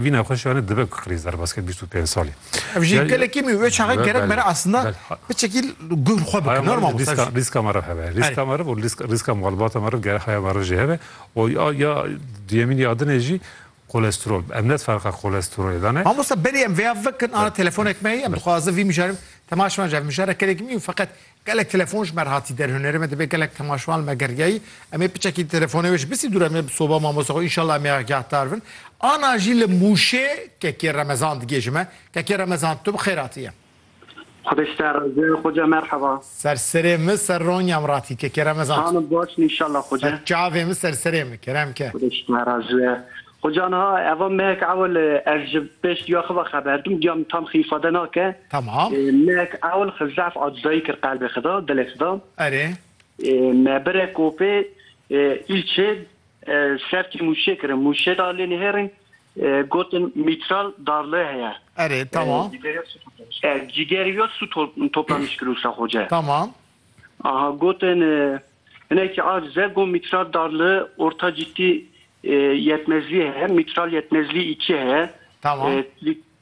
Vî nexweşiyanê dibe ku qirîz derbasket bîst û pênc salî. Ev jî gelekî mî wê çaxê gerek bere aslında biçekî guhr xwe bike. Nor mamosta. Rîska meriv hebe. Rîska meriv û rîska malbata meriv gerek haya meriv jî hebe. O ya duyemîn ya din e jî kolesterol. Em net ferqa kolesterolê dane. Mamosta berî em vêya vekin ana telefonek me heye em dixwazin vî mijarê temaşe bikin. Ev mijara gelekî mî û feqet Gelek telefon ji me re hatî der hunerê me dibe gelek temaşevan li me geriyayî em ê piçekî telefonê wê ji bisî dûr em ê bi soba mamosta xwe înşallah em ê agyahdar bin ana jî li mûşê kekê remezan digê ji me kekê remezan tu bi xêr hatiye. Xwedê ji te re razi be xoce merheba. Ser serê min ser ronya min ratî kekê remezan tu. Xanim baş in înşallah xoce. Ser çavê min ser serê min kerem ke. Xwedê ji te re razi be. Xo ca niha eva mehek ewil ez ji pêş diya xi ve xeber dim, diya min tam xi îfade nake. Tamam. Mehek ewil xi zaf acizayî kir qelbê xi de, dilê xi de. Erê. Me bire kopê îlçê ser kê mûşê kirin. Mûşê da lê nihêrin gotin mîtral darli heye. Erê, tamam. Cîgerî ya sû toplanîş kir Usta Xoce. Tamam. Aha gotin. Hinekî a zego mîtral dar li orta cîtî yetmezlîyê heye, mîtral yetmezlî îkî heye. Tamam.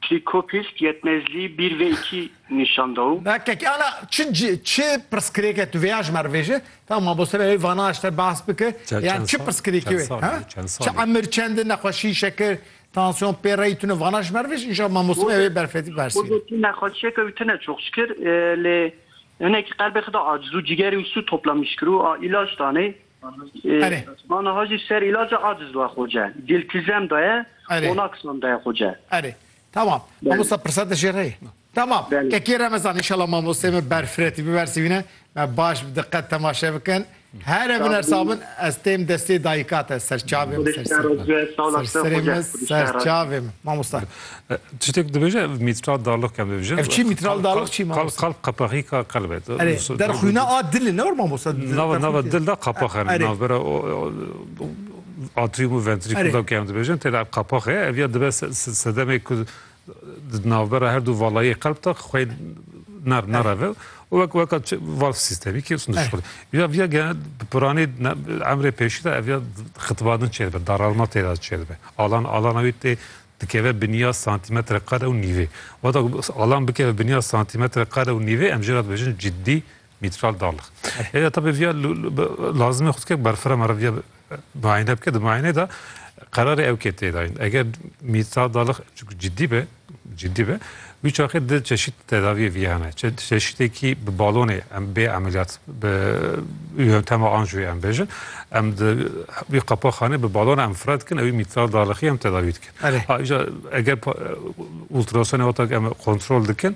Trîkopîsk yetmezlî bîr vê îkî nîşan da û. Na kekê ala çi cî çi pirsgirêke tu vêya ji me re vêjî. Tamam mamoste vê vana ji te behs bike. Yan çi pirsgirêkê wê ha? Çi emir çend in nexweşî şekir, tansiyon, pêreyî tune vana ji me re vêjî. Înşallah mamoste vê berfetî behs bîne. Xwedê tu nexweşiyeke wî tune çoxçikir lê Hinekî qelbê xwe da aciz û cîgerê wî sû topla mişkir û a îlac danê. Erê. Ma niha jî ser îlaca aciz daye Xoce. Dîltîzem daye, onaksam daye Xoce. Erê. Tamam. Mamosta pirsa te jê re ye. Tamam. Kekê remezan. Înşallah mamosteyê me berfiretî bibersivîne. Me baş bi diqet temaşe bikin. Here biner sağ bin ez têm destê dayika te ser çavê min ser ser min ser serê min ser çavê min mamosta. Tiştek dibêje mitral darlıq kem dibêje. Ev çi mitral darlıq çi mamosta? Kalp kalp qepexîka qelbê. Erê der xwîna a dilê ne war mamosta. Nava nava dil da qapax hene navbera atrium û ventrikul da kem dibêjin têde qapaxê ev ya dibe sedemê ku Di navbera her du valayê qelb de xwe ner nereve û wek weka valf sîstemî ki sun dişxil. Vîya vîya ge piranê emrê pêşî de ev ya xitibadin çêr be, daralma têra çêr be. Alan alana wî tê dikeve biniya santimetre kare û nîvê. Wata alan bikeve biniya santimetre kare û nîvê em jê re dibêjin ciddî Mîtral Dal. Êya tabê viya lazimê xwe dike berfira me re viya muayene bike di muayeneyê de qerarê ew kê tê dayîn. Eger Mîtral Dal çi ciddî be ciddî be wî çaxê di çeşît tedaviyê viya hene. Çeşîtekî bi balonê em bê emeliyat bi yöntema anjiyê em bêjin em di wî qapexanê bi balona em fira dikin ewî Mîtral Dalixî em tedavî dikin. Îja eger ultrasonê weta em kontrol dikin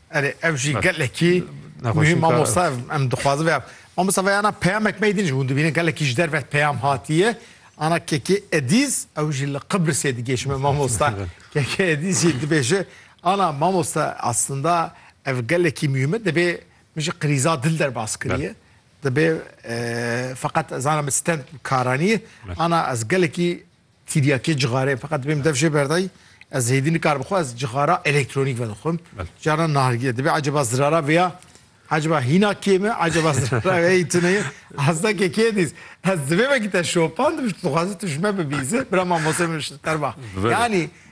Erê ev jî gelekî muhîm mamosta em dixwazin ve mamosta ve ana peyamek me din ji hûn dibînin gelekî ji derve peyam hatiye ana kekê edîz ew jî li Qibrisê digêşi me mamosta kekê edîz jî dibêje ana mamosta aslında ev gelekî muhîme dibê min ji qirîza dil derbas kiriye dibê feqet ez ana min stend karaniye ana ez gelekî Tiryakê cixarê feqet dibê min dev jê berdayî, ez hêdî nikarim xwe ez cixara elektronîk vedixwim. Caran nargiye dibê eceba zirara vêya eceba hîna kê me eceba zirara vêyî tu neyê hezda kê kê dîz. Ez divê vekî te şopandim tu dixwazî tu ji me bibîze bira mamoste min şilter ba. Yanî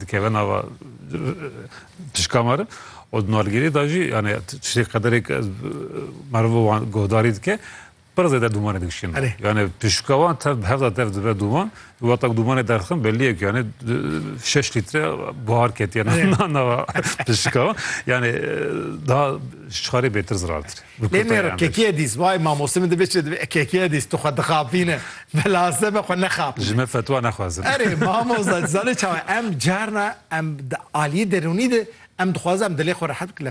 dikeve nava tişka me re û di nalgirê de jî yani tiştê qederek meriv wan guhdarî dike pir zêde dûmanê dikişîn yani tişka wan tev bi hevda tev dibe dûman wata dûmanê derxin belliye ku yani şeş lître buhar ketiye nava tişka wan yani daha ji çarê bêtir zirartir Lê nêro kekiyê dîs vay mamostê min dibê çi dibê e kekiyê dîs tu xwe dixapîne bela se be xwe nexapîne. Ji me fetwa nexwazin. Erê mamosta tu zanî çawa em carna em di aliyê derûnî de em dixwazin em dilê xwe rehet bikin lê